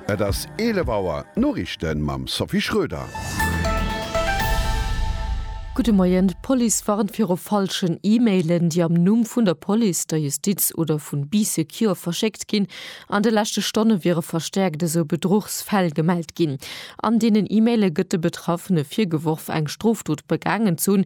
Et ass 11 Auer, d'Noriichte mam Sophie Schröder. Gudde Moien, D'Police warnt viru falschen E-Mailen, déi am Numm vun der Police, der Justiz oder vun Bee Secure verschéckt ginn. An de leschte Stonne wiere verstäerkt esou Bedruchsfäll gemellt ginn. An deenen E-Maile gëtt de Betraffene virgeworf, eng Strofdot begaangen ze hunn,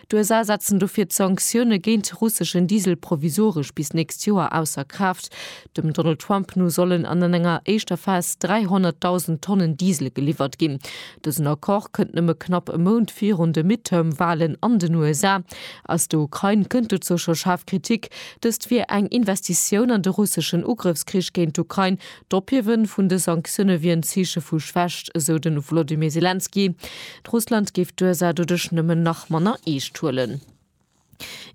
D'USA setzen dofir d'Sanktioune géint de russeschen Diesel provisoresch bis d'nächst Joer ausser Kraaft. Dem Donald Trump no sollen an an enger éischter Phas 300.000 Tonnen Diesel geliwwert ginn. Dësen Accord kënnt nëmme knapp e Mount virun de Midterm-Walen an den USA. Aus der Ukrain kënnt dozou scho schaarf Kritik. Dëst wier eng Investitioun an de russeschen Ugrëffskrich géint d'Ukrain, D'Ophiewe vun de Sanktioune wier en Zeeche vu Schwächt, esou de Wolodymyr Selenskyj. Russland géif d'USA doduerch nëmmen nach manner eescht huelen.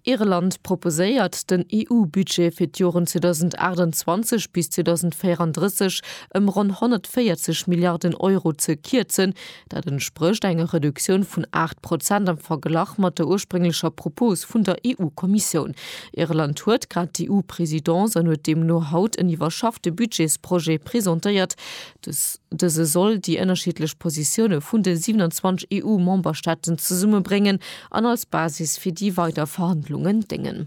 Irland proposéiert, den EU-Budget fir d'Joren 2028 bis 2034 ëm ronn 140 Milliarden Euro ze kierzen, Dat entsprécht enger Reduktioun vun 8 Prozent am Verglach mat der ursprénglecher Propos vun der EU-Kommissioun. Irland huet grad d'EU-Presidence an huet deemno haut en iwwerschaffte Budgetsprojet presentéiert. Dëse soll déi ënnerschiddlech Positioune vun de 27 EU-Memberstaaten zesummebréngen an als Basis fir déi weider Verhandlungen déngen.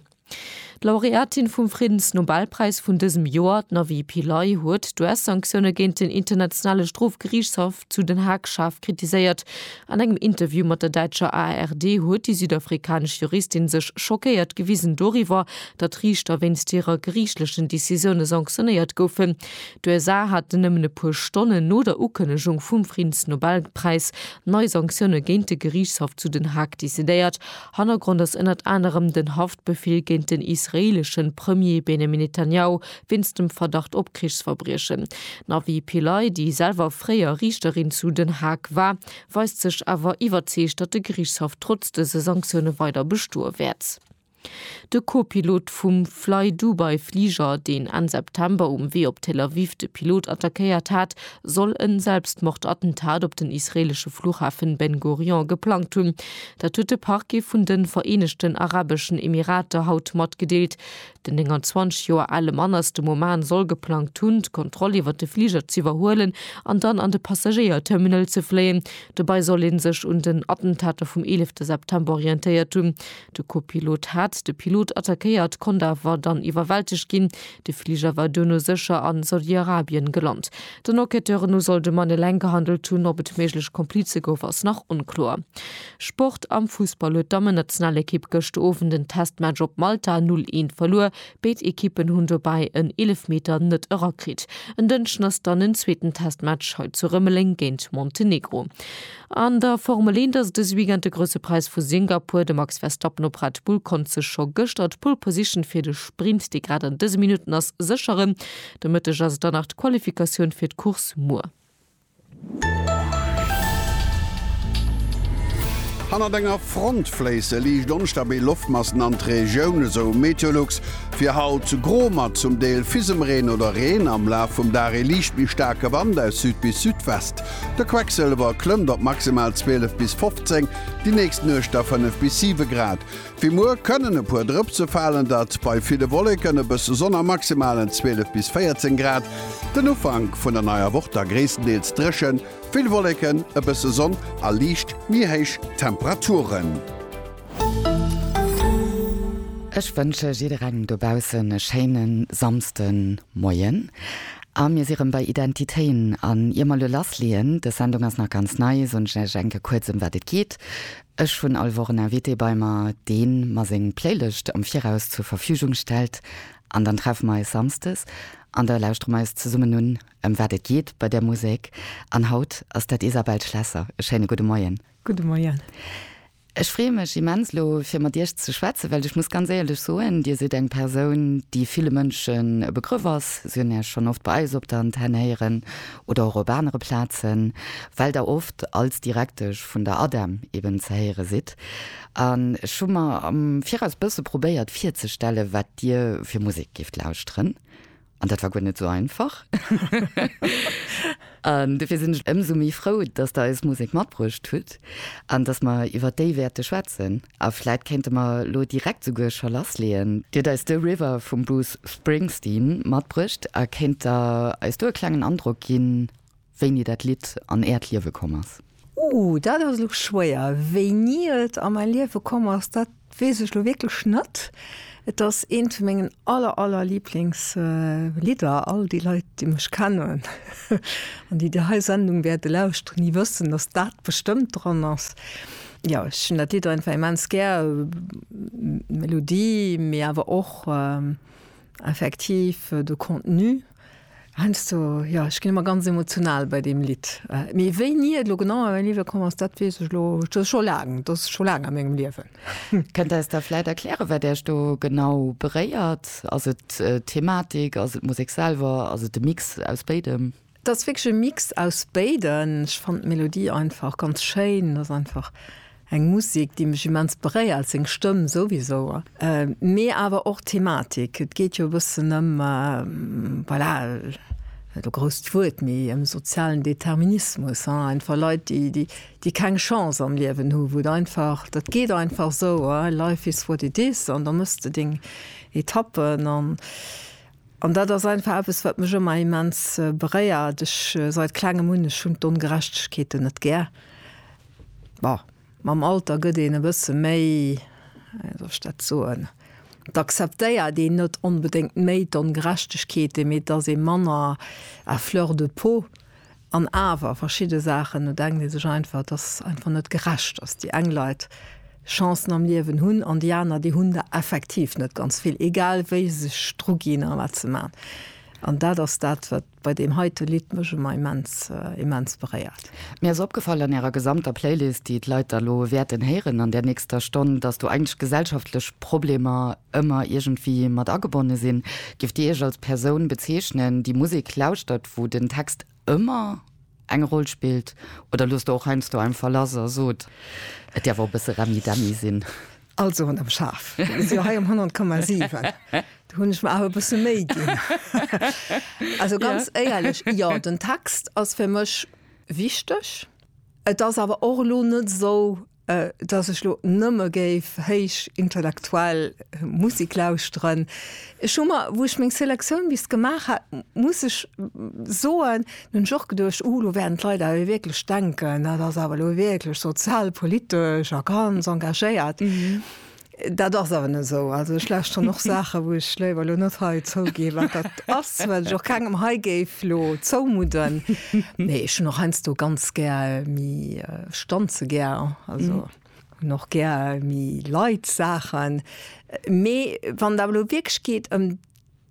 D'Laureatin vum Friddensnobelpräis vun dësem Joer, d'Navi Pillay, huet d'US-Sanktioune géint den Internationale Strofgeriichtshaff zu Den Haag schaarf kritiséiert. An engem Interview mat der däitscher ARD huet déi südafrikanesch Juristin sech schockéiert gewisen doriwwer, datt Riichter wéinst hirer geriichtlechen Decisioune sanktionéiert goufen. D'USA haten nëmmen e puer Stonnen no der Ukënnegung vum Friddensnobelpräis nei Sanktioune géint de Geriichtshaff zu Den Haag decidéiert. Hannergrond ass ënnert anerem den Haftbefeel géint den israeeleschen Premier Benjamin Netanyahu wéinst dem Verdacht op Krichsverbriechen. D'Navi Pillay, déi selwer fréier Riichterin zu Den Haag war, weist sech awer iwwerzeegt, datt de Geriichtshaff trotz dëse Sanktioune weider bestoe wäert. De Co-Pilot vum Flydubai-Fliger, deen Enn September um Wee op Tel Aviv de Pilot attackéiert hat, soll en Selbstmordattentat op den israeelesche Fluchhafen Ben Gurion geplangt hunn. Dat huet de Parquet vun de Vereenegten Arabeschen Emirater haut matgedeelt. Den 29 Joer ale Mann aus dem Oman soll geplangt hunn, d'Kontroll iwwer de Fliger z'iwwerhuelen an dann an de Passagéier-Terminal ze fléien. Dobäi soll ee sech un den Attentater vum 11 September orientéiert hunn. De Co-Pilot hat de Pilot attackéiert, konnt awer dann iwwerwältegt ginn. De Fliger war duerno sécher a Saudi-Arabien gelant. Den Enquêteuren no soll de Mann eleng gehandelt hunn, ob et méiglech Komplize gouf ass nach onkloer. Sport, Am Fussball huet d'Dammennationalekipp gëscht Owend en Testmatch op Malta 0, 1 verluer. Béid Ekippen hunn dobäi en Eelefmeter net erakritt. En Dënschden ass dann en zweeten Testmatch hei zu Rëmeleng géint Montenegro. An der Formel 1 ass dëse Weekend de Grousse Präis vu Singapur. De Max Verstappen op Red Bull konnt sech scho gëschter d'Pole Position fir de Sprint, dee grad an dëse Minutten ass, sécheren. De Mëtteg ass et dann nach d'Qualifikatioun fir d'Course muer. Hannert enger Front fléisse liicht onstabil Loftmassen an d'Regioun, esou Meteolux. Fir haut gro mat zum Deel Fisemreen oder Reen, am Laf vum Dag ee liicht méi staarke Wand aus Süd bis Südwest. De Quecksëlwer klëmmt op maximal 12 bis 15, déi nächst Nuecht da 5 bis 7 Grad. Fir muer kënnen e puer Drëpse falen, dat bei ville Wolleken, e bësse Sonn a Maximalen 12 bis 14 Grad. Den Ufank vun der neier Woch da gréisstendeels dréchen, vill Wolleken, e bësse Sonn a liicht méi héich Temperaturen. Ech wënsche jidderengem dobaussen e schéine Samsden. Moien, a mir si rëm bei Identitéen. An ier mer elo lassleeën, dës Sendung ass nach ganz nei, soen ech iech enke kuerz ëm wat et geet. Ech hunn all Woch en Invité bei mer, dee mer seng Playlëscht am Viraus zur Verfügung stellt. An dann treffe mer eis samsdes an da lauschtere mer eis zesummen un, ëm wat et geet bei där Musek. An haut ass dat Isabelle Schlesser. E schéine gudde Moien. Gudde Moien. Ech freeë mech immens elo fir mat Iech ze schwätzen, well ech muss ganz éierlech soen, Dir sidd eng Persoun, déi ville Mënschen e Begrëff ass. Si hunn Iech schonn oft bei eis op der Antenne héieren oder och op anere Plazen, well Der oft als Direktesch vun der ADEM eben ze héiere sidd. An ech hu mer am Viraus bësse probéiert virzestellen, wat Dir fir Musek géift lauschteren. An dat war guer net esou einfach. An dofir sinn ech ëmsou méi frou, dass Der eis Musek matbruecht hutt an dass mer iwwer déi wäerte schwätzen. A vläit kéinte mer elo direkt souguer scho lassleeën. Dir hutt eis The River vum Bruce Springsteen matbruecht a kéint Der eis do e klengen Androck ginn, Wéini dat Lidd an Äert Liewe komm ass? Ooh, dat ass elo schwéier. Wéini et a mäi Liewe komm ass, dat weess ech elo wierklech net. Et ass eent vu mengen aller, aller Liblingslidder. All déi Leit, déi mech kennen an déi déi hei Sendung wäerte lauschteren, déi wëssen, datt dat bestëmmt dran ass. Jo, ech hunn dat Lidd einfach immens gär. D'Melodie, mee awer och effektiv de Contenu. Heiansdo, jo, ech ginn ëmmer ganz emotional bei deem Lidd. Mee wéini et elo genau a mäi Liewe komm ass, dat weess ech elo, dat ass scho laang, dat ass scho laang a mengem Liewen. Kënnt Der eis da vläit erklären, wat Äech do genau beréiert? Ass et d'Thematik, ass et d'Musek selwer, ass et e Mix aus béidem? Et ass wierklech e Mix aus béiden. Ech fannen d'Melodie einfach ganz schéin, et ass einfach Eng Musik, déi mech immens beréiert, seng Stëmm souwisou, mee awer och d'Thematik. Et geet jo e bëssen ëm, voilà, net e grousst Wuert, mee ëm sozialen Determinismus, hein, einfach Leit, déi, déi, déi keng Chance am Liewen hu, wou et einfach, dat geet einfach esou, hein, life is what it is, an da méchs de deng Etappen. An, an dat ass einfach eppes, wat mech ëmmer immens beréiert. Ech, seit Klengem un, ech hunn d'Ongerechtegkeeten net gär, Bon, mam Alter gëtt een e bësse méi, wéi soll ech dat soen, et acceptéiert een net onbedéngt méi d'Ongerechtegkeete mee et ass ee manner à fleur de peau. An awer, verschidde Saachen, do denkt ee sech einfach, et ass einfach net gerecht, dass déi eng Leit Chancen am Liewen hunn an déi aner, déi hunn der effektiv net ganz vill, egal wéi se sech druginn a wat se maachen. An dat ass dat, wat. Bei deem heite Lidd mech emmer immens immens beréiert. Mir ass opgefall an ärer gesamter Playlist, déi d'Leit da lo wäerten héieren an där nächster Stonn, dass do eigentlech gesellschaftlech Problemer ëmmer iergendwéi mat agebonne sinn. Géift Dir Iech als Persoun bezeechnen, déi Musek lauschtert, wou den Text ëmmer eng Roll spillt, oder loosst Der och heiansdo einfach lass a sot, et däerf och e bësse Remmidemmi sinn? Also ronderëm schaarf. Mir si jo hei um 100,7. Do hunn ech mer awer e bësse Méi ginn. Also ganz éierlech, jo, den Text ass fir mech wichteg. Et ass awer och elo net esou, datt ech elo nëmme géif héich intellektuell Musek lauschteren. Ech hu mer, wou ech meng Selektioun bis gemaach hat, muss ech soen, Nun ech och geduecht, uh lo wären d'Leit awer wierklech denken, dat ass awer lo wierklech sozialpolitesch a ganz engagéiert. Dat ass awer net esou. Also ech lauschteren och Saache wou ech léiwer lo net hei zouginn, wat dat ass, wat ech och kengem hei géif lo zoumudden. Mee ech hunn och heiansdo ganz gär méi, ech danze gär, also hunn och gär méi light Saachen. Mee wann et awer lo wierklech geet ëm.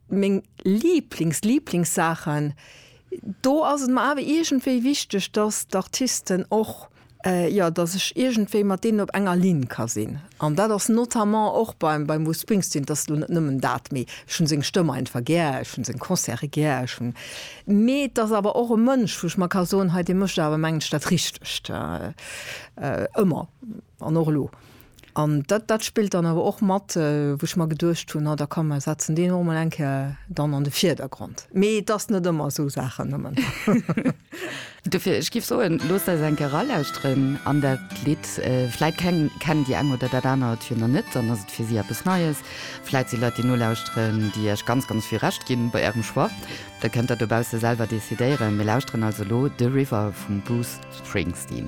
Meng Lieblings-Lieblingssaachen, do ass et mer awer iergendwéi wichteg, dass d'Artisten och, jo, dass ech iergendwéi mat deenen op enger Linn ka sinn. An dat ass notamment och beim Bruce Springsteen, et ass elo net nëmmen dat, mee ech hu seng Stëmm einfach gär, ech hu seng Concerte gär, ech hunn, mee et ass awer och e Mënsch, wou ech mer ka soen, hei, dee mécht awer mengen ech dat Richtegt, ëmmer an och elo. An dat, dat spillt dann awer och mat, wou ech mer geduecht hunn, na da komm, mer setzen deen och emol eng Kéier dann an de Vierdergrond. Mee et ass net ëmmer esou Saachen nëmmen. Dofir, ech géif soen, loosst eis eng Kéier eralauschteren an dat Lidd. Vläit kennen déi eng oder dat anert jo nach net, dann ass et fir si eppes Neies. Vläit si Leit, déi nolauschteren, déi iech ganz, ganz vill Recht ginn bei ärem Choix. Dat kënnt der dobausse selwer decidéieren. Mir lauschteren also elo The River vum Bruce Springsteen.